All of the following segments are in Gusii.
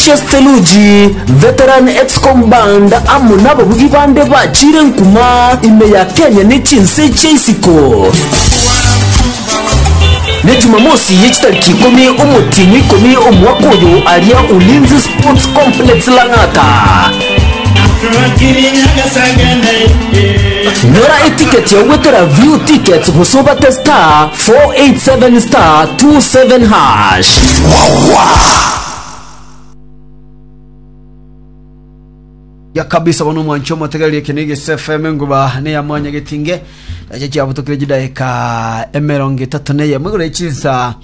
Chiasteluji, Veteran Excom Band amo nababugi bande bachiire nkuma ime ya Kenya ne chinse chia isiko. Ne Jumamosi ye chitariki ikomi omotienyi ikomi omwaka oyo aria Ulinzi Sports Complex Lang'ata. Nyora etiketi yao gwetera view tickets gose obate star 487 star 27 hash. ya kabisa bono omwancho omotegereria ekio nege SFM enguba ne ya mwanya getinge eche chiabutokire chidaika emerongo etato na eye mwigoro echinsa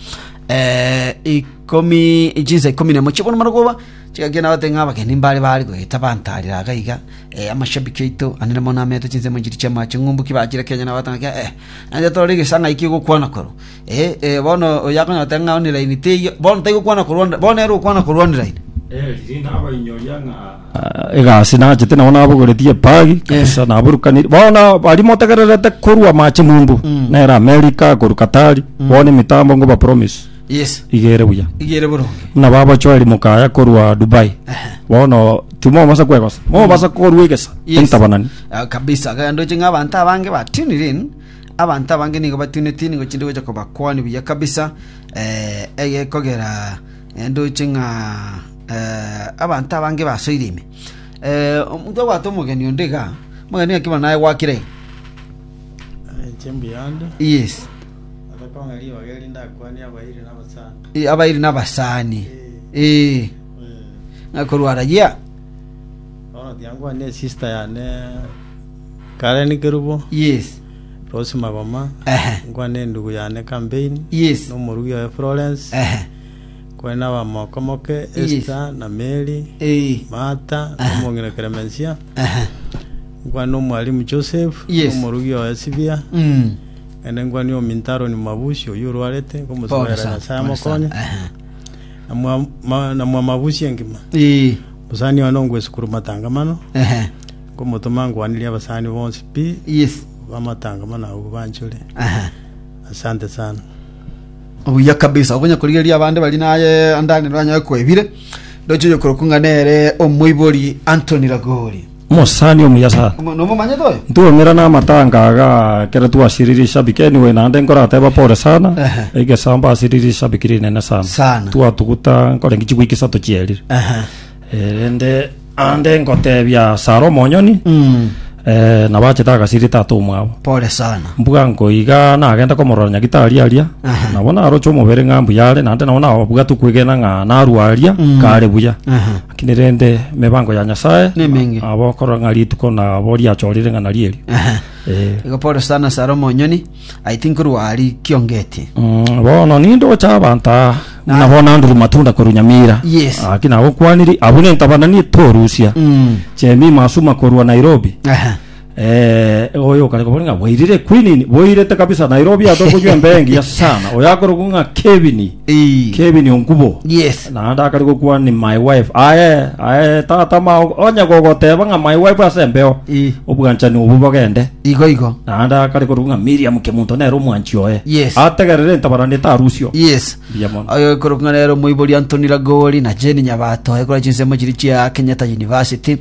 eh, ikomi echinsa ikomi nemo chibono marogoba chigaki na batenge abageni mbare bari goeta bantarira agaiga eh, amashabiki aito anene mono ameto chinse monchiri chiamache ng'umbuki bachire kenya na batanga eh nanje tore gesanga iki gokwana koro Ee, ee, bono oyio akonyora tari ng'a oniraini, teiyo, bono taiyo okwana korwanira, bono ere okwana korwaniraini. egasi nachete nabo nabogoretie epagi kabisa naburukaniri bono baria motegererete korwa amache mumbu Mm. nere amerika korwa katari bono emitambo ngo ba promise Yes, iga ere buya igere boronge. buna babochoeri mokaya korwa dubai Ehe. bono timobasa kwegosa mobasa korwa egesa Yes. entabanani Ah, kabisa genda oche ng'a abanto abange batunirin Abanto abange nigo batunetie, nigo chinde gocha kobakwania buya kabisa, eh, egekogera eh, ndoche ng'a eh, abanto abange basoire ime. Eh, omonto obwate omogeni onde iga, omogeni ng'aki bono naye gwakire iga. Chimbuyande, Yes. atakong'a ribaga eri ndakwania abairi na abasani. Eh, abairi n'abasani. Eh, ng'a korwara yea. Bono tiankwania esista yane Kare nikerubo, Yes. Rosi magoma, Ehe. nkwa nendugu yane Campaign, Yes. nomorugi oye Florence, Ehe. kore nabamoko moke Yes. Esther na Mary, Ee. Martha, Aha. nomong'ina Clemencia, Ehe. nkwa nomwalimu Joseph, Yes. nomorugi oye Sibia, Mm. ende nkwa ni ominto Aaron Mabusi oyio orwarete, Pole nkomosabaera sana, Nyasaye pole sana. amokonye, Ehe. na mwa- ma- na mwa Mabusi engima. Ee. Mosani one ongwe esukuru matangamano, Ehe. Nkomotoma ngwanirie abasani bonsi pi Yes. bamatanga mono abwo banchore. Aha. Asante sana. obuya kabisa obonya korigereria abande bari naye andani banyaye kwebire ndoche oyo korokwa ng'a nere omoibori antoni ragori Omosani omuya sana. Omo- nomomanyete oyo Ntwomera na amatanga aga kere twasiriri shabiki anyway naende nkorateba pore sana Ehe. egesamba asiriri shabiki rinene sana Sana. twatuguta nkorengi chigwiki isato chierire Aha. Erinde ande ngotebia sara omonyoni Mm. eh, nabo achete agasiri tata omwabo Pole sana. mbuga nkoiga nagende komorora nyagitari aria Aha. nabo naroche omobere ng'a mbuya are naende nabo nabwate kwegena ng'a narwa aria Mm. kare buya Aha. lakini rende mibango ya nyasaye Nemingi. abo korora ng'a rituko nabo riachorire ng'a narieri Aha. eh, Igo pole sana sara omonyoni I think korwa aria kiongeti. Mm, bono nindocha abanto aa Na- nabo nanduru matunda korwa nyamira Yes. aki nagokwaniri abwo nentabanani torusia Mm. chemi masuma korwa nairobi Aha. Eh, oyo okare kobori ng'a bwairire kwinini bwairete kabisa nairobi atokoywa embe engiya sana oyo akoroku ng'a kebini Ii. Kevin Ongubo. Yes. Naende akare gokwana ni my wife. Aye, aye tata mao onye gogoteba ng'a my wife ase embeo. Ii. Obwanchani obo bogende. Igo igo. Naende akare korwa ng'a Miriam Kemunto nere omwanchi oye. Yes. Ategerere entabarana etarusio. Yes. Mbuya mono. Oyo okorokwa ng'a nere omoibori Anthony Lagori na Jane Nyabato ekora chinsemo chiria chia Kenyatta University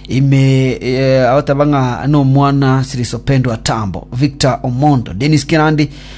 ime eh, agoteba ng'a nomwana Sirisopendwa Tambo, Victor Omondo, Dennis Kirandi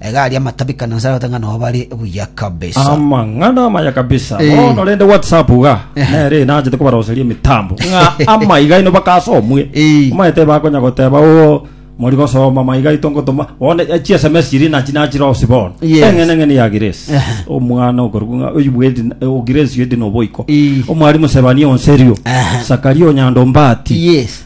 Egari y'amatabi kana nse arabate ng'a nao bare buya kabisa. Amang'ana amaya kabisa Eh. bono rende whatsapp iga Eh. nere inachete kobaroseria emitambo ng'a ama iga ino bakasomwe Eh. omaete bakonya goteba o mori gosoma ma iga itongotoma bono eh, chi sms chiri nachi nachirosi bono Yes. eng'ene eng'ene ya grace Eh. omwana okorugu ng'a oyu bwedi o grace yedi noboiko Eh. omwarimu sebania onserio Eh. sakaria onyandombati yes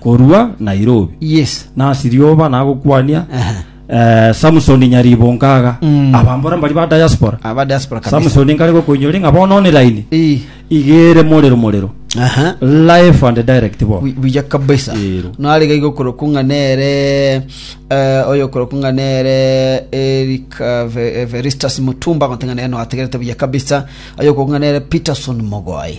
korwa Nairobi Yes. nasi rioba nagokwania Aha. eh, Samson Nyaribonkaga Mm. abambora mbari ba diaspora Aba diaspora kabisa. Samson nkare gokoinyori ng'a bono online Eh. igere morero morero Aha. live and direct bo Wi- wija kabisa Ero. narega igokoro kunga nere eh, oyo okoro kunga nere eric eh, Ve- eh, veristas mutumba gotenga nere noategerete buya kabisa oyo okokunga nere peterson mogoi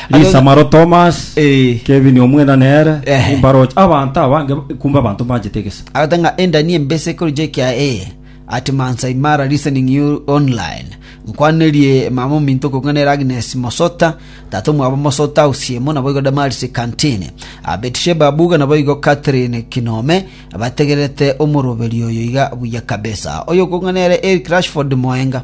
Lisa maro Thomas, Eh. Kevin omwena nere, Ehe. nimbaroche abanto abange, kumbe abanto mbanchete egesa. Agoteba ng'a endani embese ekoricha ekia eye at Mansai Mara listening you online. Nkwanerie mama ominto okong'a nere Agnes Mosota, tata omwabo Mosota Usiemo naboigo Damaris Kantini. Ah, Betsheba Abuga naboigo Catherine Kinome bategererete omoroberio oyo iga buya kabisa. Oyo okong'a nere Eric Rashford Moenga.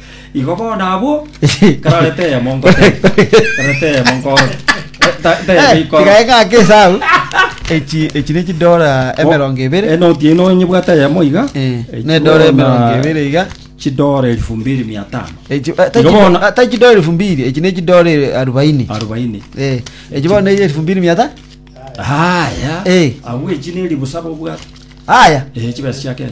Igo bono abwo karore teyemo ngote. Karore teyemo nkoro. Ta- Teyemo ikoro. tigae gake esau echi echi ne chidora emerongo ebere Enoti eno onyebwate yemo iga. Eh, Echi ne dora bono emerongo ebere iga Chidora elfu mbili mia tano. Echi- eh, ta Igo chido- bono- ah, ta chidora elfu mbili echi ne chidora eh, arobaini Arobaini. Eh, echi bono ne elfu mbili mia ta Haya. Eh. Abwo echi neri busaba obwate. aya Eh, chibesa chia Kenya.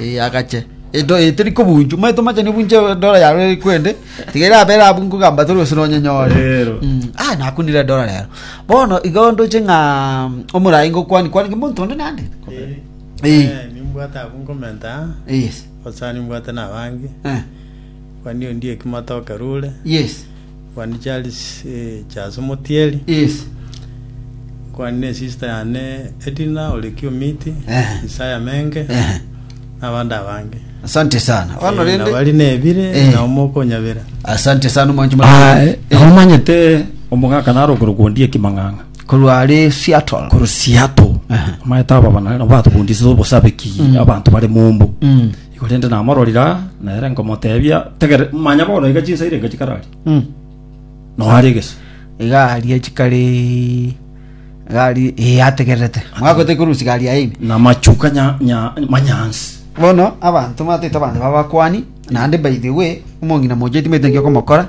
Ee, agache. Edo e teri kobunju, mwe tomachani obunje dola yaro eri kwende. Tigera abera abu nkugamba toro osino onyenyore. Rero. Mm, ah nakunire dola rero. Bono igo ndoche ng'a mm, omorai ngokwani kwani kimonto onde nande. Eh. nimbwate abwo nkomenta Yes. osa nimbwate nabange Eh. kwani ondi ekimotoke rure Yes. Nkwani Charles Charles Omotieri. Yes. Nkwani ne sister yane Edina ore Kiomiti, Ehe. Isaya Menge Ehe. na abande abange. Asante sana. Bono Eh, rende. nabari nebire Eh. na omoko onyabera. Asante sana omonche Aye, motari. omanyete omogaka naro okorokondie kimang'ang'a Korwa ari Seattle. koro siato Aha. omanyete aba bana batokondisize obosabeki abanto bare mombo Mm. Korende namororire aa, na ere nkomoteebia, Tegere, manya bono iga chinsairi enga chikararie, Mm. na oare egesu. iga aria chikari iga aria ee ategererete mwagotete korusia gari yaye ime Na machuka nya, nya, manyansi. bono abanto mataete abanto babakwani naende by the way omong'ina mochia timanyete naki okomokora